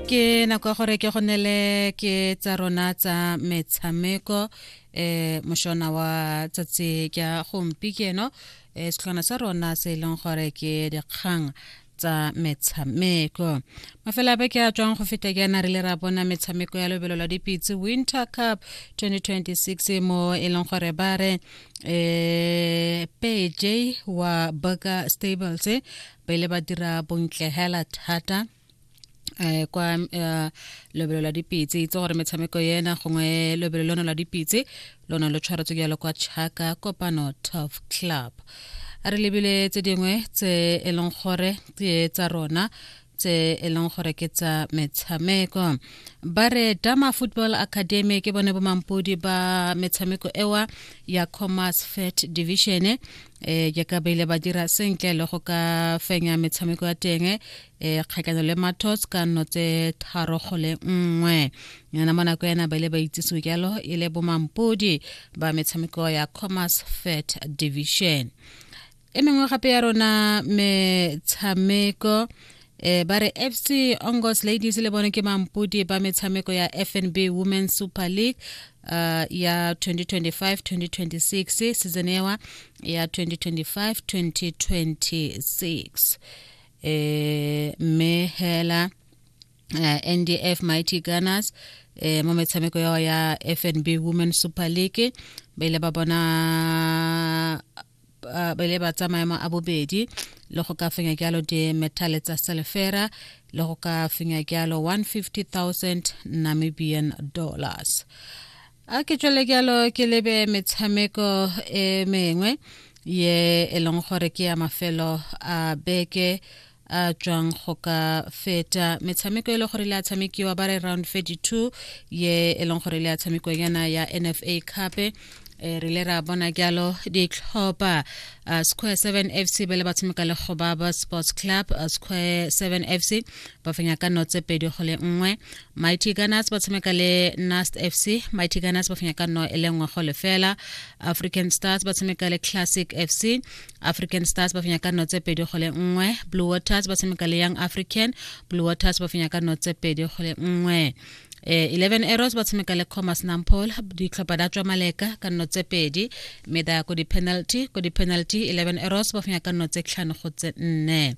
ke nako ya gore ke go nele ke tsa rona tsa metshameko eh moshona wa tsatsi ka gompi keno eh setlhona sa rona se e leng gore ke dikgang tsa metshameko mafela be ke a tswang go feta ke ana re le ra bona metshameko ya lobelo la dipitse winter cup 2026 mo e leng gore ba re um pj wa burger stables pele ba dira bontle hela thata eh kwa eh, lobelo la dipitse itse gore metshameko ena gongwe lobelo lono la dipitse lona lo tshwaretswe jalo kwa chaka kopano tof club a re lebile tse dingwe tse e leng gore ke tsa rona tse e leng gore ke tsa metshameko ba re dama football academy ke bone bomampodi ba metshameko ewa ya commerce fet division eh jaaka ba ile ba dira sentle le go ka fenya metshameko ya teng eh kgakano le matos ka nno tse tharo go le nngwe yana mo nako yana ba ile ba itsisiwe jalo e le bomampodi ba metshameko ya commerce fet division e mengwe gape ya rona metshameko e ba re fc ongos ladies le bone ke mampodi ba metshameko ya fnb women super league uh, ya 2025-2026 season ewa ya 2025-2026 eh mme hela uh, eh, ndf mighty gunners eh, mo metshameko yao ya fnb women super league ba ile ba bona ba ile ba tsa maemo a bobedi le go ka fenya jalo dimethale tsa selefera le go ka fenya jalo 150,000 namibian dollars a ke tswele jalo ke lebe metshameko e mengwe ye e leng gore ke ya mafelo a beke a tswang go ka feta metshameko e le gore le a tshamekiwa ba re round 32 ye e leng gore le a tshamekiwa yana ya nfa cupe e re le ra bona jalo ditlhopha uh, square 7 fc ba le ba tshameka le gobaba sports club uh, square 7 fc ba fenya ka notse pedi go le nngwe mighty gunners ba tshameka le nast fc mighty gunners ba fenya ka no e le nngwe go lefela african stars ba tshameka le classic fc african stars ba fenya ka nno tse pedi go le nngwe blue waters ba tshameka le young african blue waters ba fenya ka nno tse pedi go le nngwe eh, 11 arrows ba tshameka le commerce nampol ditlhopha da tswa maleka ka nno tse pedi mme da ko di-penalty ko di-penalty 11 arrows ba fenya ka nno tse tlhano go tse nne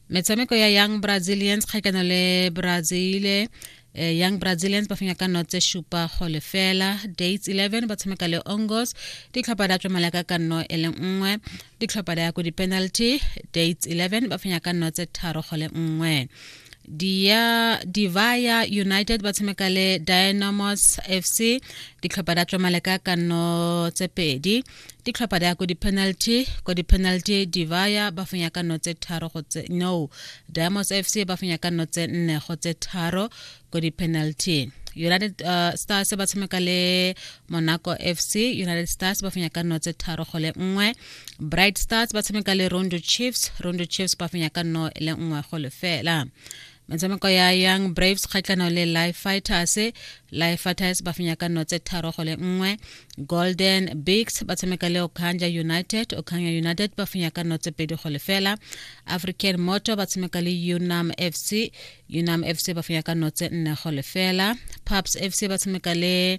metshameko ya young brazilians kgakano le brazile eh, young brazilians ba fenya ka nno tse supa go lefela dates 11 ba tshameka le ongos ditlhopha da tswamala ka ka nno e le nngwe ditlhopha da ya ko di-penalty dates 11 ba fenya ka nno tse tharo go le nngwe dia divaya united ba tshameka le dynamos fc ditlhopha da tswamale ka kanno tse pedi ditlhopha di ya ko di-penalty ko di-penalty divaya ba fenya ka nno tse tharo go tse no diamonds f c ba fenya ka nno tse nne go tse tharo ko di-penalty united uh, stars ba tshameka le monaco f c united stars ba fenya ka nno tse tharo go le nngwe bright stars ba tshameka le rondo chiefs rondo chiefs ba fenya ka nno le nngwe go lefela fela metshameko ya young braves kgatlhano le life fighters life fighters ba fenya ka nno tse tharo go le nngwe golden bigs ba tshameka le okanja united okanja united ba fenya ka nno tse pedi go le fela african motor ba tshameka le unam fc unam fc ba fenya ka nno tse nne go le fela paps fc ba tshameka le